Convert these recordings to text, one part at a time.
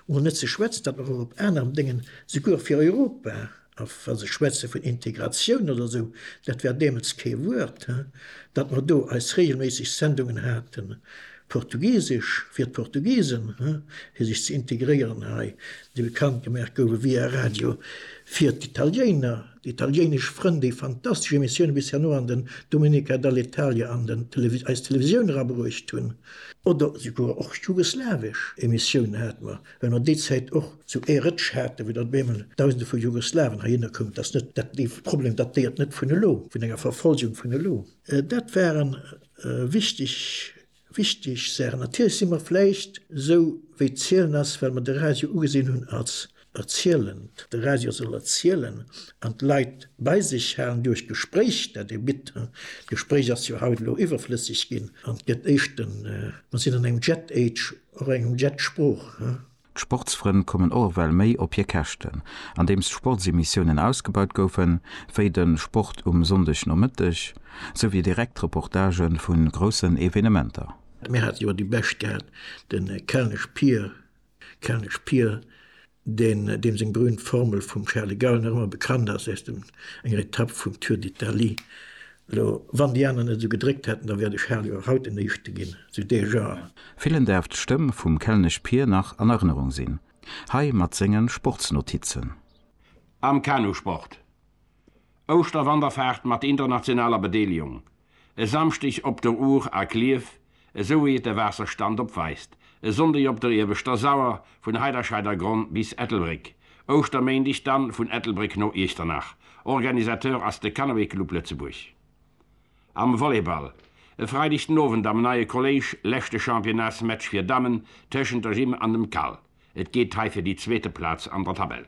Mol net zeschwätzt dat mer och op aneren Déngen, souguer fir Europa, a wa se schwätze vun Integratioun oder esou, dat war deemools kee Wuert, dat mer do eis regelméisseg Sendungen haten, Portugisesch fir d'Portugisen, fir sech ze integréieren hei, déi bekannt gemaach gouwen via Radio fir d'Italiéiner. D'italiéinesch Frënn, déi fantastesch Emissioune bis herno an den Domenica dall'Italia an den eis Televisioun erabruecht hunn, oder souguer och jugoslawesch Emissiounen hate mer, well mer déi Zäit och zu Air Rëtsch haten, wou dann op eemol Dausende vu Jugoslawen heihinner koumen. Et ass net dat, dee Problem datéiert net vun elo, vun enger Verfolgung vun elo. Dat waren wichteg Wichteg Saachen, Natierlech si mer vläicht esou wéi d'Zielen ass, well mer de Radio ugesinn hunn als erzielend. De Radio soll erzielen an d'Leit bei sech halen duerch d'Gespréich, dat e bitt. D'Gespréich ass jo haut elo iwwerflësseg ginn an gëtt éischten, mer sinn an engem Jet-Age, och engem Jet-Sprooch. D'Sportsfrënn kommen och ewell méi op hir Käschten. Andeems d'Sportsemissiounen ausgebaut goufen, wéi de Sport um Sonndegnomëtteg, sou wéi direkt Reportagë vu groussen Evenementer. Mir hate jo déi bescht gehat, de Kelnesch Pier, Kelnesch Pier, deen, deem seng berühmt Formel vum Charles de Gaulle nach ëmmer bekannt ass, aus dem, enger Etapp vum Tour d'Italie, Lo, wann déi aner net sou gedréckt hätten, da wäert ech Hal jo och haut den Éischte ginn, sou de Jean. Villen därft d'Stëmm vum Kelnesch Pir nach an Erënnerung sinn, hei mat sengen Sportsnotizen. Am Kanusport, Ouschterwanderfaart mat internationaler Bedeelegung e Samschdeg op der Our a Klierf esou wéi et de Waasserstand opweist, e Sonndeg op der Ieweschter Sauer vun Heiderscheidergronn bis Ettelbréck, Ouschterméindeg dann vun Ettelbréck no Iechternach. Organisateur ass de Canoë Club Lëtzebuerg. Am Volleyball, e Freideg den Owend am neie Kolléisch, leschte Championnats-Match fir Dammen tëschent der Gym an dem Cal. Et geet hei fir déi zweete Plaz an der Tabell.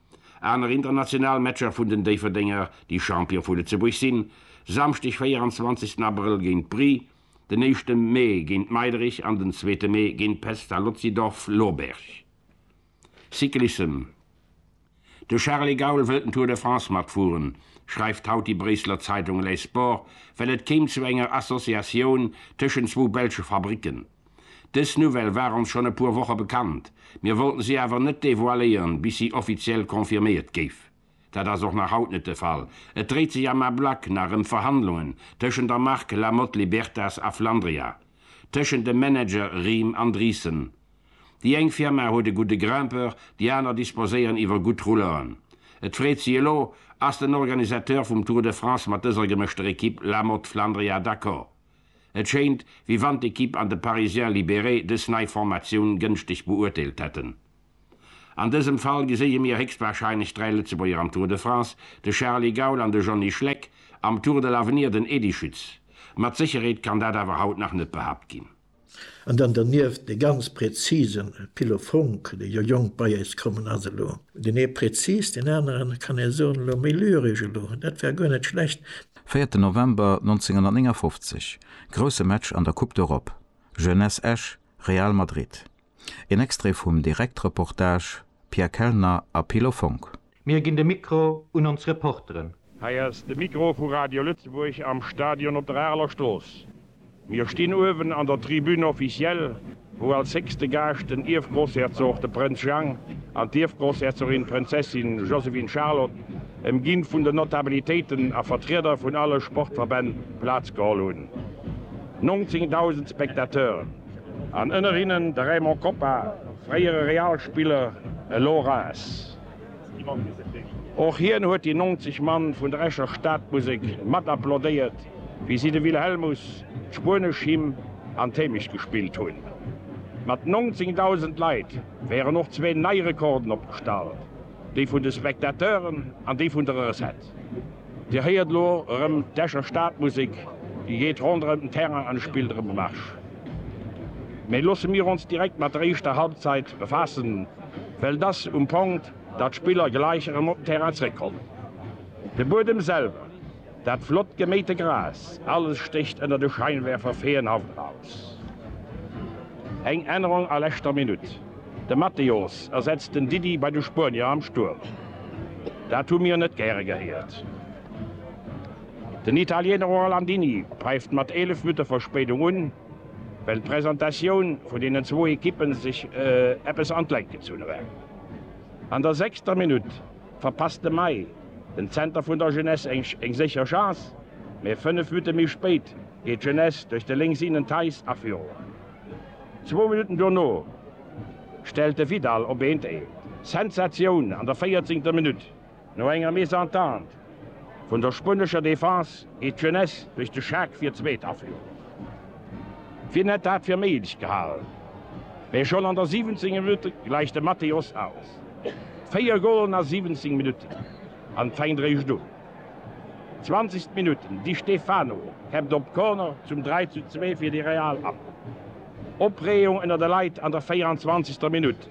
Aner international Matcher vun den Déifferdenger, déi Champion vu Lëtzebuerg sinn, Samschdeg 24 Abrëll géint Bry, den éischte Mee géint Meiderich an den zweete Mee géint Pestalozzi Dorf Loberg. Cyclissem De Charly Gaul wëllt den Tour de France matfueren, schreift haut déi Bréisseler Zeitung Les Sports, well et kéim zu enger Associatioun tëschent zwou belsche Fabricken. Dës Nouvelle war ons schonn e puer Woche bekannt, mir wollten si awer net devoiléieren, bis si offiziell confirméiert géif. Dat ass och nach haut net de Fall, et dréit sech am Ablack nach ëm Verhandlungen tëschent der Mark La Motte Libertas a Flandria, tëschent de Manager Riem an Driessen. Déi eng Firma huet e gudde Grimpeur, déi aner disposéieren iwwer gutt Rouleuren. Et freet si elo, Ass den Organisateur vum Tour de France mat dëser gemëschter Ekipp La Motte Flandria d'accord? Et schéint, wéi wann d'Ekipp an de Parisien libéré dës nei Formatioun gënschteg beurteelt hätten. An dësem Fall geséie mir héchstwahrscheinlech dräi Lëtzebuerger am Tour de France, de Charly Gaul an de Johnny Schleck, am Tour de l'Avenir den Edy Schütz. Mat Sécherheet kann dat awer haut nach net behaapt ginn. An dann dernieft dee ganz präzise Pilo Funk, dee jo jonk bei eis kommen ass elo. Deen ee präzis, deen aneren, kann ee soen, elo méi lyresch elo. Dat war guer net schlecht. Véierten November 1959, grousse Match an der Coupe d'Europe, Jeunesse Esch, Real Madrid. Een Extrait vum Direktreportage, Pierre Kellner a Pilo Funk. Mir ginn de Mikro un ons Reporteren. Hei ass de Mikro vu Radio Lëtzebuerg am Stadion op der Areler Strooss. Mir stinn uewen an der Tribune officielle, wou als héchste Gaascht den Ierfgroussherzog, de Prënz Jang, an d'Ierfgroussherzogin, d'Prënzessin Joséphine-Charlotte, ëmginn vun den Notabilitéiten a Vertrieder vun alle Sportverbänn, Plaz geholl hunn. 19.000 Spectateuren, an ënner hinnen de Raymond Koppa, fréiere Real-Spiller, elo Reims. Och hien huet déi 90 Mann vun der Escher Stadmusek mat applaudéiert, wéi si de Wilhelmus, d'spuenesch Hymn an d'Hémecht gespillt hunn. Mat 19.000 Leit wären och zwee nei Rekorden opgestallt, dee vun de Spectateuren an dee vun der Recette. Dir héiert elo erëm d'Escher Stadmusek, déi geet ronderëm den Terrain an spillt erëm e Marsch. Mee loosse mir ons direkt mat der éischter Halbzeit befaassen, well et ass um Ponkt, datt d'Spiller gleich erëm op den Terrain zréckkommen. De Buedem selwer, dat flott geméite Gras, alles stécht ënner de Scheinwerfer feenhaft aus. Eng Ännerung a leschter Minutt. De Matteos ersetzt den Didi bei de Spuenier am Stuerm. Dat hu mir net gäre gehéiert. Den Italiener Orlandini päift mat 11 Minutte Verspéidung un, well d'Presentatioun vun deenen zwou Ekippe sech eppes an d'Längt gezunn huet. An der sechster Minutt verpasst de May, den Zenter vun der Jeunesse, eng sécher Chance, mä 5 Minutte méi spéit geet d'Jeunesse duerch de Lénksinnen Theis a Führung. Zwou Minutten dono stellt de Vidal op eent ee Sensatioun an der véierzéngter Minutt. No enger Mésentente vun der spuenescher Defense geet d'Jeunesse duerch de Schak fir d'zweet a Führung. Wien hätt dat fir méiglech gehal? Mee schonn an der siwenzéngter Minutt gläicht de Mateos aus. Véier Golen a siwenzéng Minutten, an et fänkt eréischt un. 20. Minutt, Di Stefano käppt op Corner zum 3 zu 2 fir de Real an. Opreegung ënner de Leit an der 24. Minutt,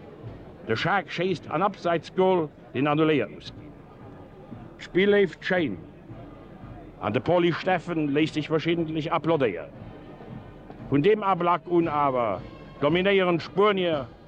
de Shaq schéisst an Abseitsgol, deen annuléiert muss ginn. D'Spill leeft schéin an de Poly Steffen léisst sech verschiddentlech applaudéieren. Vun deem Ablack un awer dominéieren d'Spuenier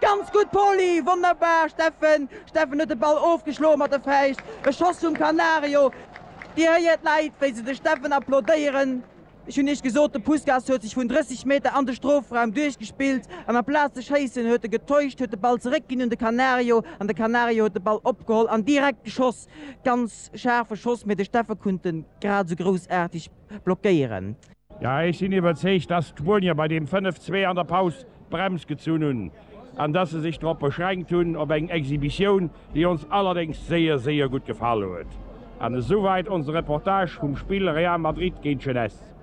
Ganz gutt Poli, wonnerbar Steffen! Steffen huet de Ball ofgeschloe mat de Fäischt, e Schoss vum Canario. Dir héiert d'Läit wéi se de Steffen applaudéieren. Ech hunn iech gesot, de Puskas huet sech vun 30 Meter an de Strofraum duerchgespillt an amplaz ze schéissen huet e getäuscht, huet de Ball zeréck ginn un de Canario an de Canario huet de Ball opgeholl an direkt geschoss. Ganz schaarfe Schoss, mee de Steffen kunnt en grad esou groussaarteg. blockéieren. Ja, ech sinn iwwerzeegt, dass d'Spuenier bei deem 5, 2 an der Paus d'Brems gezunn hunn an dass se sech drop beschränkt hunn op eng Exhibitioun, déi ons allerdéngs séier, séier gutt gefall huet. An esouwäit onse Reportage vum Spill Real Madrid géint Jeunesse.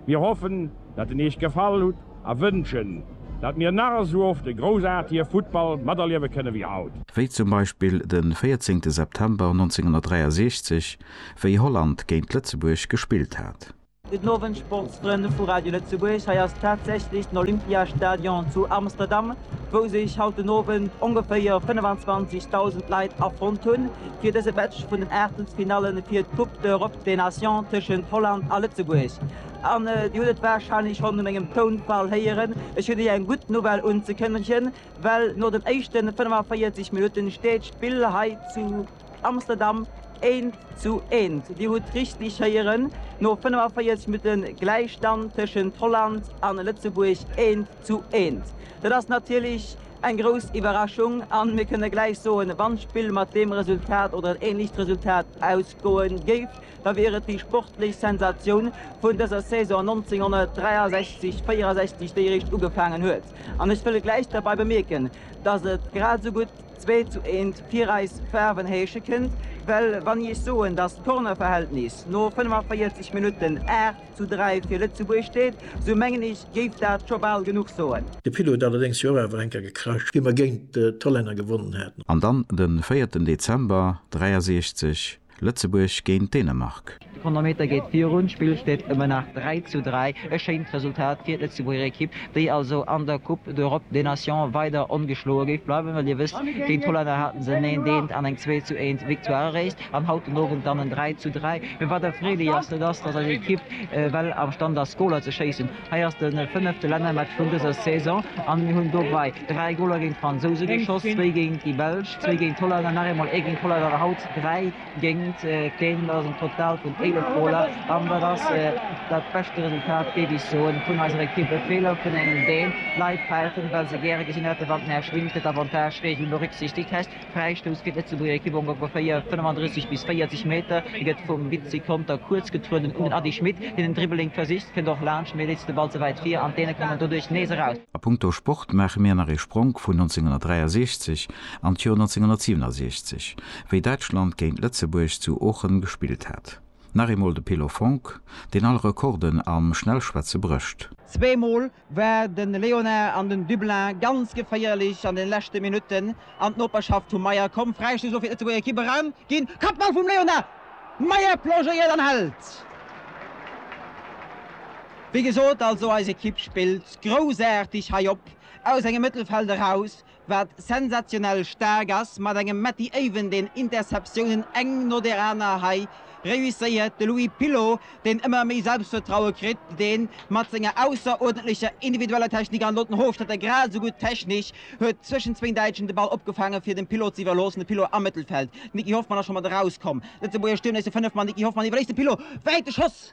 Mir hoffen, dat en Iech gefall hutt a wënschen, dat mir nach esou oft e groussaartige Futtball materliewe kënne wéi haut. Wéi zum Beispill de 14 September 1963, wéi Holland géint Lëtzebuerg gespillt hat. Gudden Owend Sportsfrënn vu Radio Lëtzebuerg, hei ass tatsächlech den Olympiastadion zu Amsterdam, wou sech haut den Owend ongeféier 25.000 Leit afonnt hunn fir dëse Match vun den Aachtelsfinalle fir d'Coupe d'Europe des Nations tëschent Holland a Lëtzebuerg. An Dir hutt et warscheinlech schonn u mengem Tounfall héieren, ech hunn Iech eng gutt Nouvelle unzekënnegen, well no den éischte 45 Minutten steet d'Spill hei zu. Amsterdam, Eent zu eent. Dir hutt richteg héieren, no 45 Minutte Gläichstand tëschent Holland a Lëtzebuerg, eent zu eent. Dat ass natierlech eng grouss Iwwerraschung a mir kënne gläich soen, wann d'Spill mat deem Resultat oder en änlecht Resultat ausgoe géif, da wier et déi sportlech Sensatioun vun dëser Saison 1963, 64, déi eréischt ugefaangen huet. An ech wëll gläich derbei bemierken, datt et grad esou gutt, Zwee zu eent fir eis Faarwen heesche kënnt, well wann ech soen, dass d'Kornerverhältnis no 45 Minutten 8 zu 3 fir Lëtzebuerg steet, sou mengen ech géif dat scho bal genuch soen. De Pilot huet allerdéngs jo och awer eng Kéier gekracht, wéi mer géint d'Hollänner gewonnen haten. An dann de véierten Dezember 63. Lëtzebuerg géint Dänemark. De Chronometer geet virun, d'Spill steet ëmmer nach 3 zu 3. E schéint Resultat fir d'Lëtzebuerger Ekipp, déi also an der Coupe d'Europe des Nations weider ongeschloe géif bleiwen. Well Dir wësst, géint d'Hollänner haten se en Eent, Eent an eng Zwee zu Eent Victoire eréischt an haut den Owend dann en 3 zu 3. Mee wat erfreelech ass, dat ass, datt eis Ekipp well am Stand ass, Goler ze schéissen. Hei ass de fënnefte Lännermatch vun dëser Saison an mir hunn dobei 3 Goler géint d'Fransouse geschoss, zwéi géint déi Belsch, zwéi géint d'Holland an nach eemol ee géint d'Holland an haut dräi géint keen. Dat ass en Total vun 11 Goler an dat ass dat beschte Resultat, géif ech soen, vun eiser Ekipp. E Feeler vun engem, deen d'Leit fält, well se gäre gesinn hätten, wann den Här Schwindt d'Avantage-Regel berücksichtegt hätt. Fräistouss fir d'Lëtzebuerger Ekipp ongeféier 35 bis 40 Meter. Hie gëtt vum Vizi Conter kuerz getrueden un den Ady Schmit, deen den Dribbling versicht, kënnt och laanscht, mee leet de Ball ze wäit vir an d'Däne kommen doduerch nees eraus. A punkto Sport maache mir nach ee Spronk vun 1963 an d'Joer 1967, wéi Däitschland géint Lëtzebuerg zu Oochen gespillt hat. Nach eemol de Pilo Fonck, deen all Rekorden am Schnellschwätze brécht. Zweemol war de Léonard an den Dublin ganz geféierlech an den leschte Minutten an d'Noperschaft vum Meyer komm. Fräistéiss elo fir d'Lëtzebuerger Ekipp eraus ginn. Kappball vum Léonard, Meyer plongéiert an hält. Wéi gesot, also eis Ekipp spillt groussaarteg hei op, aus engem Mëttelfeld eraus, wat sensationell staark ass, mat engem Matty Aven deen Interceptiounen eng no der aner hei reusséiert, de Louis Pilot deen ëmmer méi Selbstvertraue kritt, deen mat senger ausseruerdentlecher individueller Technik an elo den Hofstetter grad esou gutt technesch huet zwëschen zwéin Däitschen de Ball opgefaange fir dem Pilot ze iwwerloossen, de Pilot am Mëttelfeld, Niki Hoffmann ass scho mat erauskomm, Lëtzebuerger Stierm léisst e Fënnefmann, Niki Hoffmann iwwerléisst dem Pilot, wäite Schoss!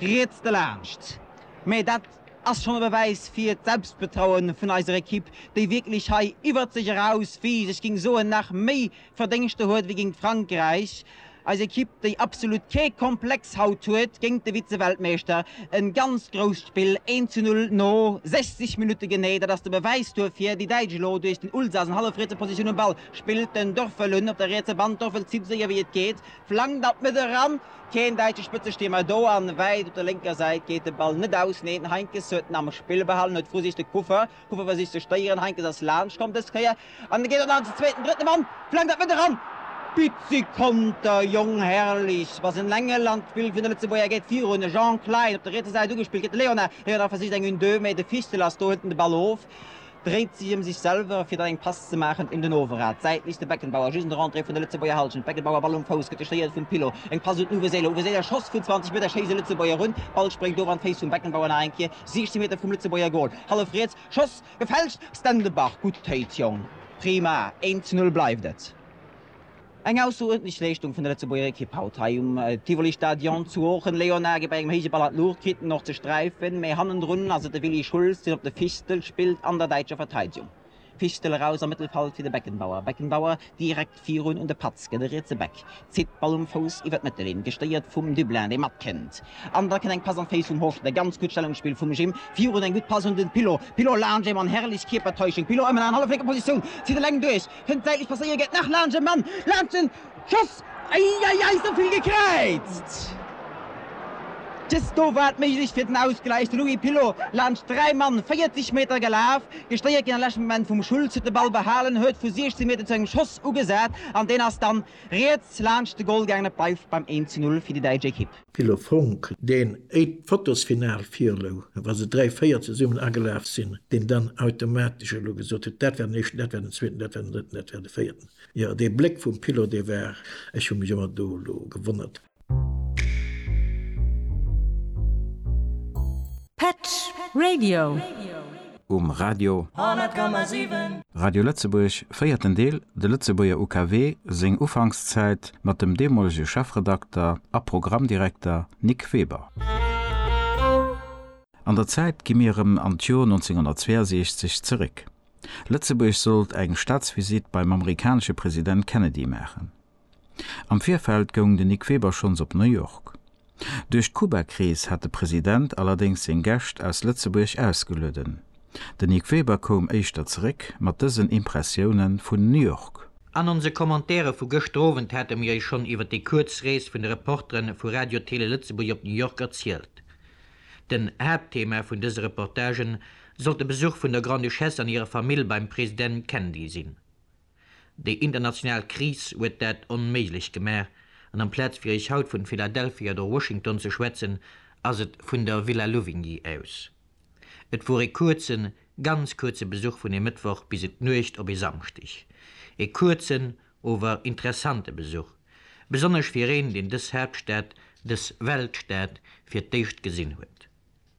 Riets delaanscht. Mä dat ass schonn e Bewäis fir d'Selbstbetraue vun eiser Ekipp, déi wierklech hei iwwert sech eraus wiisst, ech géing soen, nach méi Verdéngschter huet wéi géint Frankräich. Eis Ekipp, déi absolut kee Komplex haut huet géint de Vize-Weltmeeschter. E ganz grousst Spill, eent zu null no 60 Minutte genee. Dat ass de Bewäis duerfir. Déi Däitsch elo duerch den Ulsas an hallefrietse Positioun um Ball. Spillt den Dorfel un op der rietse Band. Dorfel zitt esou séier wéi et geet. Flankt an d'Mëtt eran, keen däitsche Spëtzestierm war do, an wäit op der lénker Säit geet de Ball net aus. Neen, Heinkes huet en am Spill behalen, huet versicht Kuffer, Kuffer versicht ze stéieren, Heinkes ass laanscht komm dës Kéier, an e geet an als zweeten, drëtten Mann, flankt an d'Mëtt eran, Bizzi Konter, Jong Herrlichs was en Engel, an d'Spill vun de Lëtzebuerger geet virun, e Jean Klein op der rietser Säit ugespillt, kritt de Leonard, Leonard versicht eng une-deux, mee de Fichtel ass do, hëlt en de Ball of, dréit sech em sech selwer fir dann eng Pass ze maachen un den Overrad. D'Säit liicht de Beckenbauer just un der Entrée vun der Lëtzebuerger Hallschent. D'Beckenbauer Ball um Fouss gëtt gestéiert vum Pilo. Eng Pass un Uwe Seeler. Uwe Seeler Schoss vun 20 Meter schéisst e Lëtzebuerger un. Ball spréngt of an d'Féiss vum Beckenbauer nach eng Kéier 16 Meter vum Lëtzebuerger Goal. Hallef riets Schoss gefälscht. Stenderbach gutt Téit Jong. Prima, 1 zu 0 bleift et. Eng ausseruerdentlech Leeschtung vun der Lëtzebuerger Ekipp haut hei um Tivoli Stadion zu Oochen. Léonard geet bei engem héije Ball an d'Luucht, kritt en och ze sträifen, mee hannendrun ass et de Willy Schulz, deen op de Fistel spillt an der däitscher Verteidegung. Fistel eraus am Mëttelfald fir de Beckenbauer. Beckenbauer direkt virun un de Patz, gëtt e rietse Back, zitt d'Ball um Fouss iwwer d'Mëttelinn, gestéiert vum Dublin, dee matkënnt an da kënnt eng Pass an d'Féiss vum Horschler. Ganz gutt Stellungsspill vum Jim virun, eng gutt Pass un den Pilot. Pilot laanscht een Mann, herrlech Kierpertäuschung, Pilot ëmmen an halleflénker Positioun, zitt eleng duerch, Kënnt säitlech passéiert, gett nach laanscht e Mann, laanscht den Schoss, eieiei souvill gekräizt, just do war d'Méiglechkeet fir den Ausgläich, de Louis Pilot laanscht 3 Mann 40 Meter gelaf, gestéiert ginn am leschte Moment vum Schultz, huet de Ball behalen, huet vu 16 Meter zu engem Schoss ugesat an deen ass dann riets laanscht de Goal gaangen, et bleift beim 1 zu 0 fir déi däitsch Ekipp. Philo Funck, deen, éi d'Fotosfinal virlou, wa se dräi, véier zesummen agelaf sinn, deen dann automatesch elo gesot huet, dat war den éischten, dat war den zweeten, dat war den drëtten, dat war de véierten. Jo, dee Bléck vum Philo, dee war, ech hu mech ëmmer do elo gewonnert. Patch Radio. um Radio 100,7. Radio Lëtzebuerg, véierten Deel, De Lëtzebuerger UKW, seng Ufankszäit, mat dem deemolege Chefredakter a Programmdirekter Nic Weber. An der Zäit gi mir erëm an d'Jor 1962 zeréck. Lëtzebuerg sollt eng Staatsvisitt beim amerikanesche President Kennedy maachen. Am Virfeld goung den Nic Weber schonns op New York. Duerch d'Kuba-Kris hat de President allerdéngs seng Gäscht aus Lëtzebuerg ausgelueden. Den Nic Weber koum éischter zeréck mat dësen Impressioune vun New York. An onse Commentaire vu gëschter Owend hate mir iech schonn iwwer déi kuerz Rees vun de Reportere vu Radio Télé Lëtzebuerg op New York erzielt. Den Haaptthema vun dëse Reportagen sollt de Besuch vun der Grande-Duchesse an hirer Famill beim President Kennedy sinn. Déi international Kris huet dat onméiglech gemaach, an amplaz fir Iech haut vun Philadelphia oder Washington ze schwätzen, ass et vun der Villa Louvigny aus. Et wor ee kuerzen, ganz kuerze Besuch vun ee Mëttwoch bis en d'Nuecht op ee Samschdeg. Ee kuerzen, ower interessante Besuch, besonnesch fir een, deen dës Haaptstad, dës Weltstad fir d'éischt gesinn huet.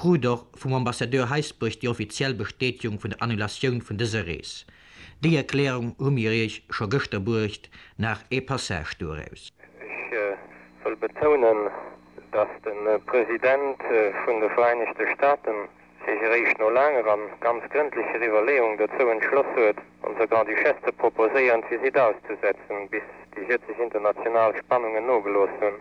krut och vum Ambassadeur Heisbourg déi offiziell Bestätegung vun der Annulatioun vun dëser Rees. Déi Erklärung hu mir Iech scho gëschter bruecht, nach ee Passage doraus. Ech wëll betounen, dass de President vun de Vereinigte Staaten sech eréischt no laanger a ganz grëndlecher Iwwerleeung dozou entschloss huet, onser Grand-Duchesse ze proposéieren, d'Visite auszusetzen, bis déi jëtzeg international Spannungen nogelooss hunn.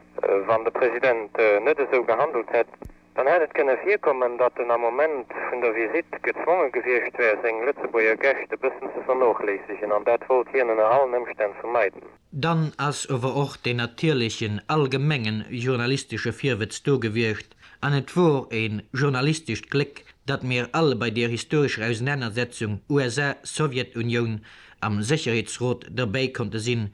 Wann de President net esou gehandelt hätt, Dann hätt et kënne virkommen, datt en am Moment vun der Visitt gezwonge gewiescht wär, seng Lëtzebuerger Gäscht e bëssen ze vernochléissegen, an dat wollt hien ënner allen Ëmstänn vermeiden. Dann ass ower och deen natierlechen allgemengen journalistesche Virwëtz do gewiescht, an et wor een journalistescht Gléck, datt mir all bei deer historescher Ausenanersetzung USA-Sowjetunioun am Sécherheetsrot derbäi konnte sinn,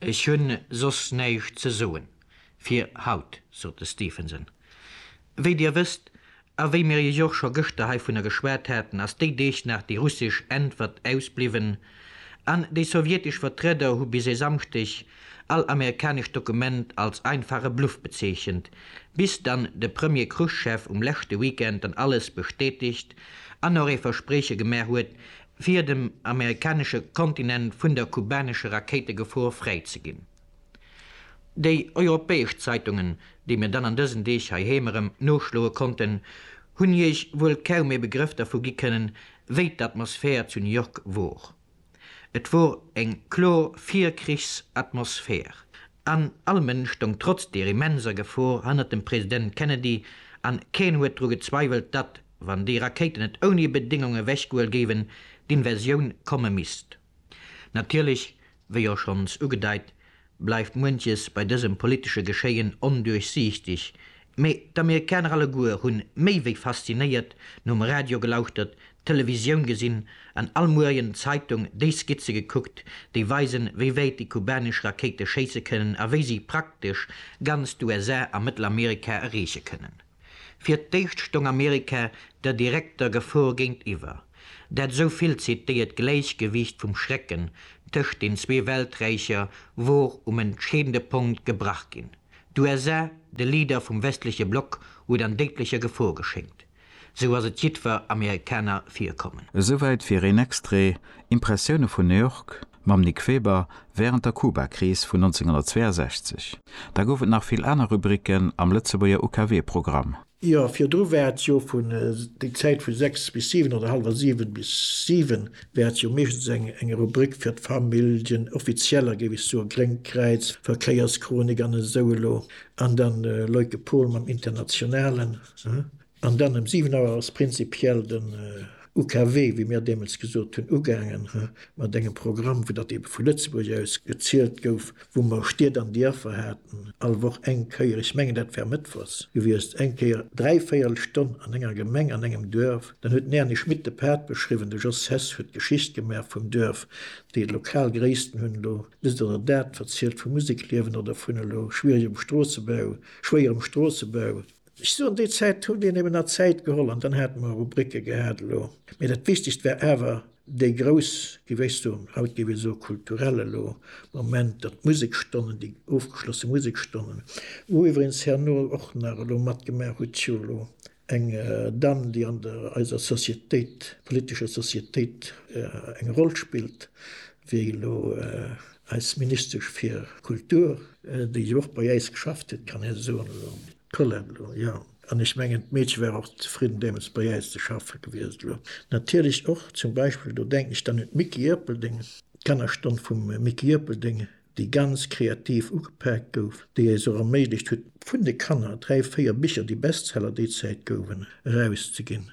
Ech hunn soss näischt ze soen fir haut, sot de Stephenson. Wéi Dir wësst, a wéi mir Iech och scho gëschter heivunner geschwat haten, ass déi Deeg nach déi russesch Äntwert ausbliwwen, an déi sowjetesch Vertrieder hu bis e Samschdeg all amerikanescht Dokument als einfache Bluff bezeechent, bis dann de Premier Chruschev um leschte Weekend dann alles bestätegt an och ee Versprieche gemaach huet, fir dem amerikanesche Kontinent vun der kubanesche Rakéitegefor fräi ze ginn. Déi europäesch Zeitungen, déi mir dann an dësen Deeg heiheem erëm noschloe konnten, hunn Iech wuel kaum ee Begrëff dervu gi kënnen, wéi d'Atmosphär zu New York wor. Et wor eng kloer Virkrichsatmosphär. An all Mënsch stong trotz der immenser Gefor hannert dem President Kennedy, an keen huet dru gezweiwelt, datt, wann déi Rakéiten et ouni Bedéngung ewechgehuel géiwen, d'Invasioun komme misst. Natierlech, wéi och schonns ugedeit, bleift muenches bei dësem politesche Geschéien onduerchsiichteg, mee d'Amerikaner alleguer hunn méi wéi faszinéiert nom Radio gelauschtert, d'Televisioun gesinn an all Muerien d'Zeitung déi Skizze gekuckt, déi weisen, wéi wäit déi kubanesch Rakéite schéisse kënnen a wéi si praktesch ganz d'USA a Mëttelamerika erreeche kënnen. Fir d'éischt stoung Amerika der direkter Gefor géintiwwer. Dat esou vill zitéiert Gläichgewiicht vum Schrecken tëscht den zwee Welträicher wor um entscheedende Punkt gebrach ginn. D'USA, de Leader vum westleche Block, huet an déidlecher Gefor geschéngt. Esou ass et jiddwer Amerikaner virkommen. Esouwäit fir een Extrait, Impressioune vun New York, mam Nick Weber wärend der Kubakris vun 1962. Da gouf et nach vill aner Rubriken am Lëtzebuerger UKW-Programm. Jo, virdru war et jo vun, déi Zäit vu sechs bis siwen oder hallwer siwen bis siwen, war et jo meeschtens eng Rubrik fir d'Familljen, offizieller, géif ech soen, Gréngt Kräiz, Verkéierschronik an esou elo. An dann Leuke Pol mam Internationalen. An dann ëm 7 Auer ass prinzipiell den UKW, wéi mir deemools gesot hunn, ugaangen mat engem Programm, wou datt eebe vu Lëtzebuerg aus gezielt gouf, wou mer Stied an Dierfer haten, all Woch eng Kéier, ech mengen dat war mëttwochs gewiescht, eng Kéier dräi Véierelstonn an enger Gemeng, an engem Duerf. Dann huet den Erny Schmit de Pad beschriwwen, de Jos Hess huet d'Geschicht gemaach vum Duerf, déi lokal Gréissten hunn elo dëst oder dat verzielt vum Musekliewen oder vun elo schwieregem Stroossebau, schwéierem Stroossebau. Ech soen, déi Zäit huet een eben nach Zäit geholl an dann hate mer Rubricke gehat elo. Mee dat Wichtegst war awer dee grouss gewéchs do, haut géif ee soe kulturell elo, Moment, datt d'Musekstonnen, déi ofgeschlosse Musekstonnen, wou iwweregens herno och nach elo matgemaach huet jo elo eng Damm, déi an der eiser Societéit, politescher Societéit eng Roll spillt, wéi elo. Eis Ministesch fir Kultur, déi jo och bei äis geschafft huet, kann een soen, elo d'Colette elo, jo. An ech mengen, d'Meedche war och zefridden deemools bei äis ze schaffe gewiescht. Elo natierlech och zum Beispill, do denken ech dann un d'Micky Ierpeldeng, d'Kannerstonn vum Micky Ierpeldeng, déi ganz kreativ ugepaakt gouf, déi eis och erméiglecht huet, vun de Kanner dräi, véier Bicher, déi Bestseller déi Zäit gouwen, erauszeginn.